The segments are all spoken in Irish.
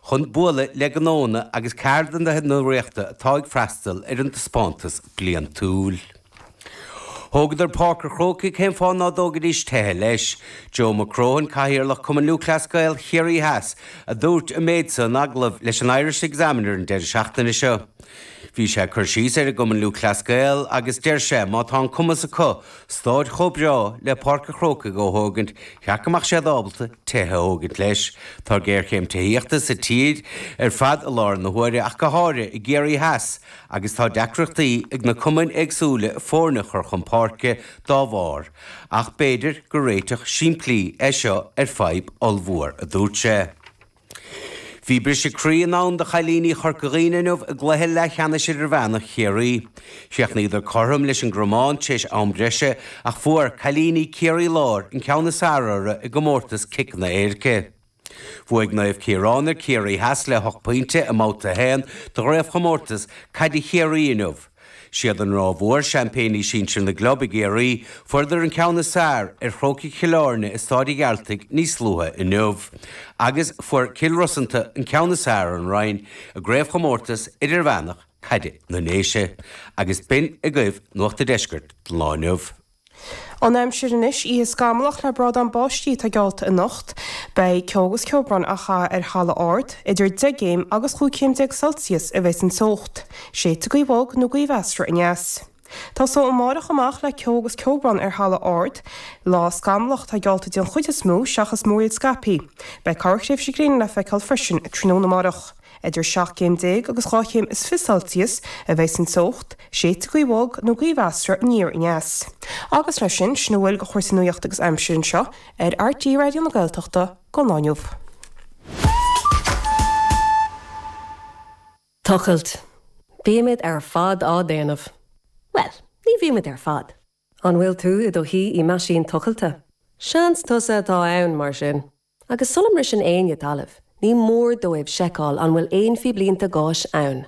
chun bualadh le gnónna agus ceardaithe na Ríochta atá ag freastal ar an taispeántas bliantúil. Thógadar Páirc an Chrócaigh, cén fáth ná dtógaidís tithe leis? Joe McCrohan, Cathaoirleach Cumann Lúthchleas Gael Chiarraí Theas, a dúirt an méid seo in agallamh leis an Irish Examiner an deireadh seachtaine seo. Bhí sé ag cur síos ar an gCumann Lúthchleas Gael agus deir sé, má tá an cumas acu, Stáid chomh breá le Páirc a' Chrócaigh a thógaint, gur cheart go mbeadh siad ábalta tithe a thógaint leis. Tá géarchéim tithíochta sa tír ar fad i láthair na huaire ach go háirithe i gCiarraí Theas agus tá deacrachtaí ag na cumainn éagsúla foirne a chur chun páirce dá bharr. Ach b'fhéidir gur réiteach simplí é seo ar fadhb ollmhór, a dúirt sé. Bhí briseadh croí i ndán do chailíní Chorca Dhuibhne inniu i gcluiche leathcheannais idirmheánach Chiarraí. Chríochnaíodar cothrom leis an gCromán tar éis am breise ach fuair cailíní Ciarraí Láir an ceann is fearr orthu i gcomórtas ciceanna éirice. Bhuaigh Naomh Ciaráin ar Ciarraí Theas le hocht bpointe i mBabhta 1 de Chraobhchomórtas Caide Chiarraí inniu. 'Siad an Ráth Mhór seaimpéiní sinsir na gclub i gCiarraí, fuaireadar an ceann is fearr ar Chrócaigh Chill Áirne i Staid a' Ghearaltaigh níos luaithe inniu, agus fuair Cill Rosanta an ceann is fearr ar an Rinn i gCraobhchomórtas Idirmheánach Caide na nDéise, agus b'in agaibh Nuacht a' Deiscirt don lá inniu. An aimsir anois, oíche scamallach le brádán báistí atá geallta anocht. Beidh ceo agus ceobrán chomh maith ar thalamh ard. Idir deich gcéim agus chúig chéim déag Celsius a bheidh an teocht. Séidfidh gaoth bhog nó gaoth mheasartha aneas. Tosóidh amárach amach le ceo agus ceobrán ar thalamh ard. Lá scamallach atá geallta den chuid is mó seachas múraíl scaipthe. Beidh corrthréimhse gréine le feiceáil freisin tráthnóna amárach. Idir seacht gcéim déag agus dhá chéim is fiche celsius a bheas an teocht, séidfidh gaoth bhog nó gaoth mheasartha aniar aneas. Agus leis sin, sin a bhfuil de chúrsaí nuachta agus aimsire anseo ar RTÉ Raidió na Gaeltachta don lá inniu. Tochailt. Bímid ar fad á déanamh. Bhuel, ní bhímid ar fad. An bhfuil tú i do shuí i meaisín tochailte? Seans tusa atá ann, mar sin. Agus sula mbriseann éinne talamh, ní mór dóibh seiceáil an bhfuil aon phíblínte gáis ann.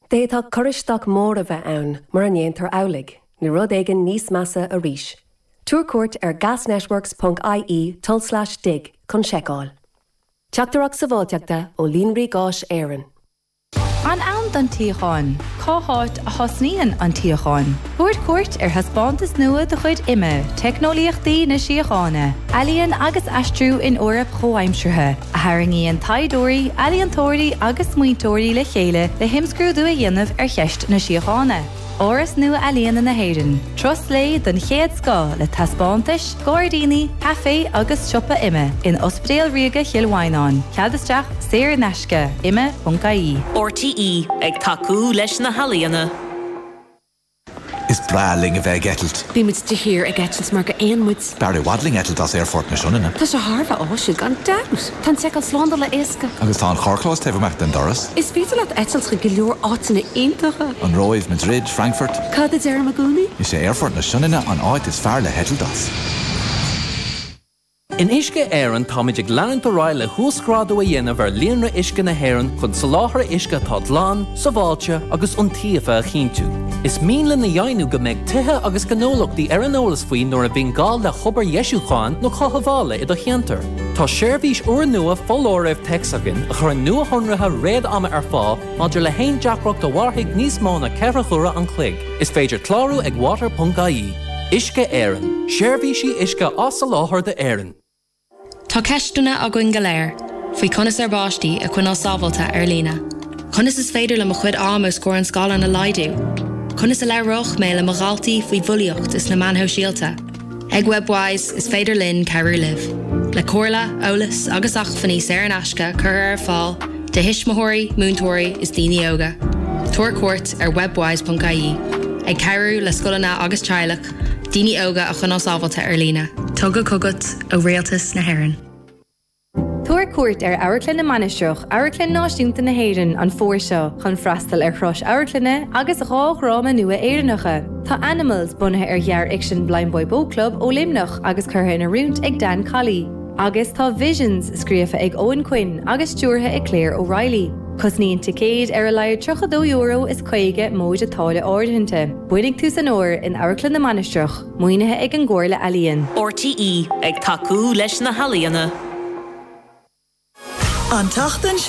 D'fhéadfadh cur isteach mór a bheith ann mura ndéantar amhlaidh, nó rud éigin níos measa arís. Tabhair cuairt ar gasnetworks ponc IE tulslais dig chun seiceáil. Teachtaireacht Sábháilteachta ó Líonraí Gáis Éireann. An ann don tsíocháin? Cá háit a thosnaíonn an tsíocháin? Tabhair cuairt ar thaispeántas nua de chuid IMMA, Teicneolaíochtaí na Síochána, Ealaín agus Aistriú in Eoraip Chomhaimseartha, a tharraingíonn taighdeoirí, ealaíontóirí agus smaointeoirí le chéile le himscrúdú a dhéanamh ar cheist na síochána. Áras Nua-Ealaíne na hÉireann, turas lae den chéad scoth le taispeántais, gairdíní, caifé agus siopa. IMMA in Ospidéal Ríoga Chill Mhaighneáin, cead isteach saor in aisce, imma.ie. RTÉ ag tacú leis na healaíona. Is breá linn a bheith ag eitilt. Bímid de shíor ag eitilt mar gur éin muid. B'fhearr i bhfad linn eitilt as Aerfort na Sionainne. Tá sé thar a bheith áisiúil, gan dabht! Tá an seiceáil slándála éasca. Agus tá an charrchlós taobh amach den doras. Is féidir leat eitilt chuig go leor áiteanna iontacha. An Róimh, Madrid, Frankfurt. Cad a deirim i gcónaí? Is é Aerfort na Sionainne an áit is fearr le heitilt as. In Uisce Éireann, táimid ag leanúint ar aghaidh le huasghrádú a dhéanamh ar líonra uisce na hÉireann chun soláthar uisce atá glan, sábháilte agus iontaofa a chinntiú. Is mian linn a dheimhniú go mbeidh tithe agus gnólachtaí ar an eolas faoi nuair a bhíonn gá le hobair dheisiúcháin nó cothabhála i do cheantar. Tá seirbhís úrnua foláirimh téacs againn a chuireann nuashonruithe réad-ama ar fáil maidir le haon deacracht a mhairfidh níos mó ná ceithre huaire an chloig. Is féidir clárú ag water.ie. Uisce Éireann, seirbhísí uisce á soláthar d'Éirinn. Tá ceisteanna againn go léir faoi conas ár bpáistí a choinneáil sábháilte ar líne. Conas is féidir liom mo chuid ama os comhair an scáileáin a laghdú? Conas a labhróidh mé le mo dhaltaí faoi bhulaíocht is na meáin shóisialta? Ag Webwise, is féidir linn cabhrú libh, le comhairle, eolas agus acmhainní saor in aisce curtha ar fáil do thuismitheoirí, múinteoirí is daoine óga. Tabhair cuairt ar webwise.ie, ag cabhrú le scoileanna agus teaghlaigh Daoine óga a choinneáil sábháilte ar líne. Tugtha chugat ó Rialtas na hÉireann. Tabhair cuairt ar Amharclann na Mainistreach, Amharclann Náisiúnta na hÉireann, an fómhar seo chun freastal ar thuras amharclainne agus dhá dhráma nua Éireannacha. Tá Animals bunaithe ar ghearrfhicsean Blindboy Boatclub ó Luimneach agus curtha in oiriúint ag Dan Colley, agus tá Visions scríofa ag Eoghan Quinn agus stiúrtha ag Claire O'Reilly. Cosnaíonn ticéid ar a laghad €32 is caoga móide táille áirithinte. Buailfidh tús an fhómhair, in Amharclann na Mainistreach, maoinithe ag an gComhairle Ealaíon. RTÉ, ag tacú leis na healaíona. An tseachtain seo